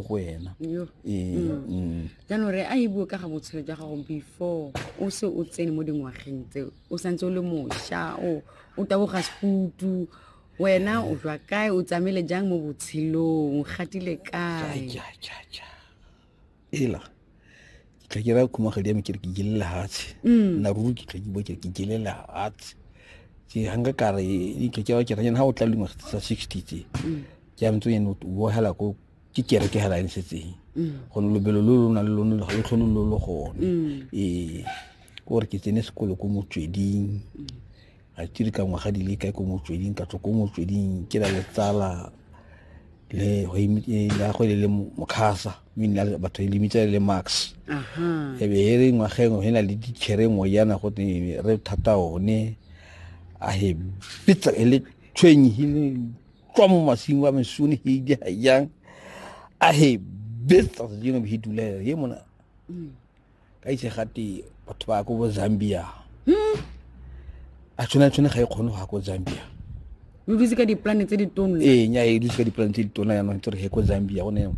go wena jaanong re a e bue ka ga botshelo jwa gago before o se o tsene mo dingwageng tse o santse o le mošwa o o taboga sefutu wena o jwa kae o tsamaile jang mo botshelong o gatile kae ela tla ke ra khumagadi ya me ke re ke jele lehatshe mm. na ruri ke tla ke bo ke re ke jele lehatshe ke hanga ka re ke ke ke re ha o tla lengwa tsa 60 tse mm. ke a ntse o ene o bohela ko ke kereke hela e ntshetseng mm. go lobelo lo lona le lone lo tlhole lo le gone mm. ee ke gore ke tsene sekolo ko motsweding mm. ga ke re ka ngwaga di le kae ko motsweding ka tswa ko motsweding ke na le tsala le e, ya go e le mokhasa mme batho e lemitsa le max e be e re ngwageng e na le dikhere ngwe yana go re thata one a he pitsa e le tshwenyegile tswa mo masing wa mesone heidi ga jang a he betsa sedino he duleo he mona mm. ka itse gate batho ba ko bo zambia hmm? a tshwana tshwane ga e kgone go ya ko zambia o dutse ka diplane tse ditona ee nya e dutse ka diplane tse ditona yanong tse re he ko zambia gone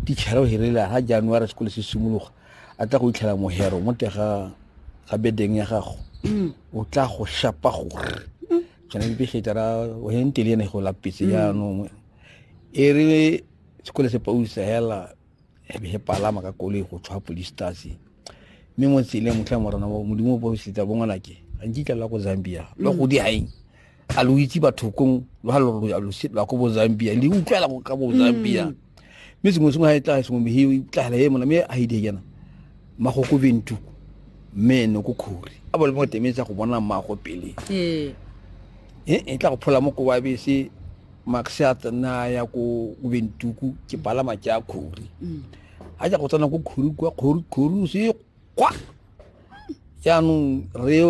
tichara o herelela ga january sekole se simologa a tla go itlhela mohero mo tega ga bedeng ya gago mm. o tla go shapa gore go na le pegetara wayeng tele ene go lapetse mm. jaanong e re sekole se pausa hela ebe he palama ka koloi go tshwa police tase mme mo tseleng motlha morana modimo o bosetsa bongwanake a nkitla la ko zambia lo mm. go di haeng a lo itse bathokong lo ha lo ya lo se la ko bo Zambia le utlwela ka bo Zambia mm. mme sengwe sengwe ga e tla sengwe mehe e tlagela e mona mme a e di kena magoko bentu mme ene ko khori a bole mo temetsa go bona mmago pele ee e e tla go phola mo kowa bese max a tsena ya ko ko bentuku ke palama ke a khori Mm. a ja go tsena ko khori kwa khori khori o se kwa jaanong re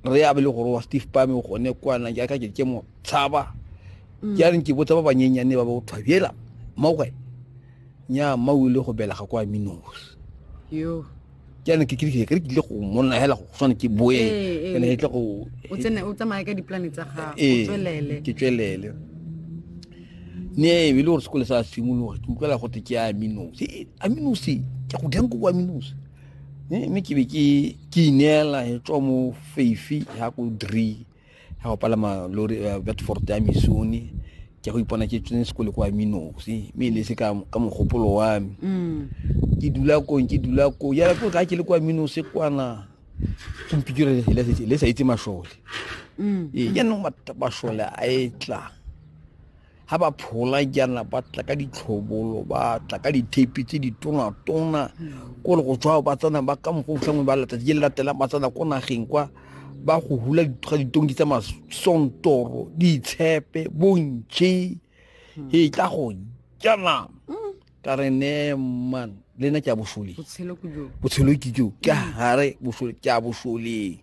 re a be le gore wa steve pame o gone kwana jaaka ke ke mo tshaba mm. ke a reng ke botsa ba banyenyane ba ba go thwabela mmoge nya mma o ile go belega kwa minos ke a reng ke kile ke tlile go monna hela go tshwana ke boe eh, eh. ene ke tle go o tsene o tsamaya ka diplane tsa gago eh, tswelele ke tswelele ne e le gore sekole sa simologa ke utlwela gote ke a minos a minos ke go dang ko kwa minos mme ke be ke ineela e tswa mo feifi ya ko dree ya go palama lori eh, bedford ya misone ke go ipona ke tsene sekole kwa minosi mme e le se ka mogopolo wa me mm. ke dula kong ke dula ko ya ko ka ke le kwa minose kwana ke mpikire le sa itse masole mm. ee jaanong masole a e tlang ga ba phola jaana ba tla ka ditlhobolo ba tla ka dithape tse di tonatona hmm. kore go tswa ba tsena ba ka mokgwa otlhangwe ba letsatsi le latelang ba tsena ko nageng kwa ba go hula ga ditonki tsa masontoro ditshepe bontšhe hmm. e tla go jana hmm. ka re ne man le nna ke a boshole botshelo ke jo ke gare ke a boshole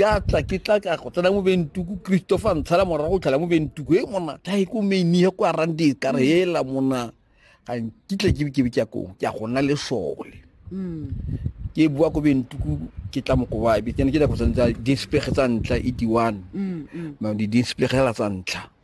ke a tla ke tla ka go tsena mo bentuku christopher ntshala morago tlhala mo bentuku e mona tla e ko meinie ko arang di ka re hela mona ga nkitle ke ke ke ko ke a gona le sole mm. ke bua ko bentuku ke tla mo koba be ke ne ke tla go tsentsa dispege tsa ntla e di one mm, mm. ma di dispege la tsa ntla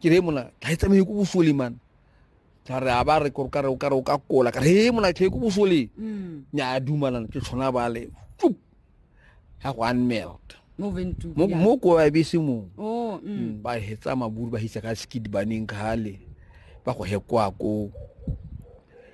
ke re mona tla e tsamaye ko bosole man tla re a ba re kore kare o kare o ka kola ka re he mona tlhe ko bosole mm. nya a dumalana ke tshwana ba le tsup ya go unmeld mo ko ba bese mo oh, mm. mm, ba hetsa maburu ba hitsa ka skid baneng khale ba go hekwa ko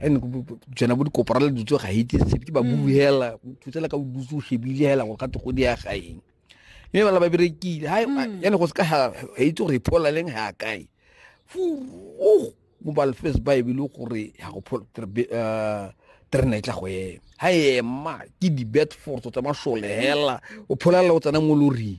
and jona bo dikopora le dutse ga itse sepe ke ba mm. bue hela thutsela ka dutse o shebile hela go gate go di ya gaeng mme bala ba berekile ha mm. yane go se ka ha itse gore phola leng ha kae fu o mo ba lefes ba e bile gore ya go phola eh, terena e tla go ema ha ema ke di bad force tsa mashole hela o phola o tsena mo loring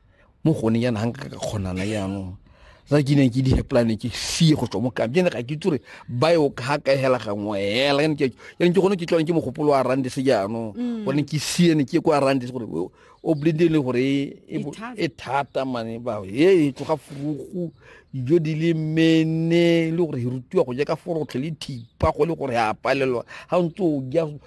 mo gone yana ga nka ka kgonana yaanong ra ke neng ke diheplane ke sie go tswa mo kamp jene ga ke itse gore ba yo ga ka hela gangwe hela yanong ke gone ke tlwane ke mogopolo wa rande se jaanong mm. gone ke sie ne ke kwa rande se gore o blende le gore e, e thata mane ba e, e tloga furugu dijo di le mene le gore rutiwa go ja ka forotlhe le thipa go le gore a palelwa ga o ntse o ja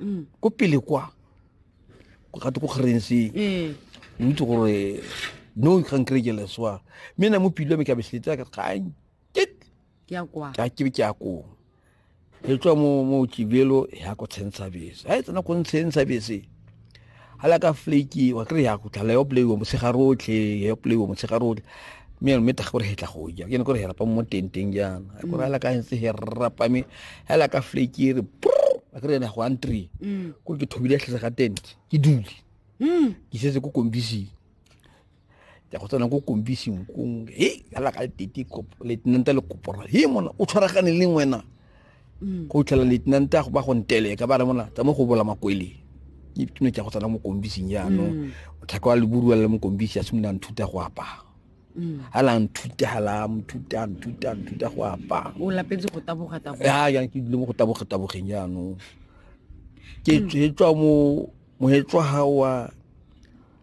Mm. ko pele kwa go gate ko kgerense ee. o itse gore no kgang kerekele swa mme na mo pilo ya me ka besletse ka kgang ka ke be ke ya kong e tswa mo mo kibelo ya ko tshentsha bese ha e tsena ko ntsheng sa bese ga la ka flake wa kry ya go tlala yo play wa motshegare otlhe yo play wa motshegare otlhe mme mme taga gore hetla go ja ke ne gore herapa mo tenteng jaana a gore ala ka ntse he rapa me ala ka flake re a kry ena go antri ko ke thobile tlhetse ga tent ke dule ke setse ko kombising ja go tsena ko kombising kong e ala ka tete letenanta le kopora he mona o tshwaragane le wena mm. go tlhela letenanta go ba go nteleka ba re mona tsa mo go bola makwele ke tuno ja go tsena mo kombising jaanong mm. motlhaka wa leburuwa le mo kombisi a simolola nthuta go apaa ha la nthuta ha la nthuta nthuta nthuta go apa o lapetse go taboga taboga ya ya ke dile mo go taboga tabogeng jaanong ke tswa mo mohetso ha wa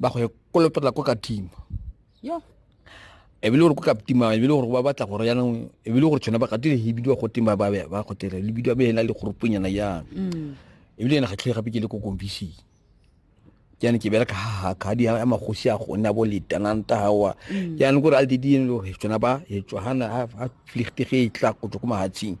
ba go kolopela ko ka team ya e bile gore ko ka team e bile gore ba batla gore yanong e bile gore tshwana ba ka tile hibidiwa go team ba ba ba go tile le bidiwa be ena le grouponyana ya mm. e bile ena ga tlhe gape ke le ko kombisi ke ene ke bela ka ha ka di ya magosi a gona bo le tananta hawa ke mm. ene gore al di di ene gore tshwana ba e tshwana ha flichtige e tla go tlo ko mahatsing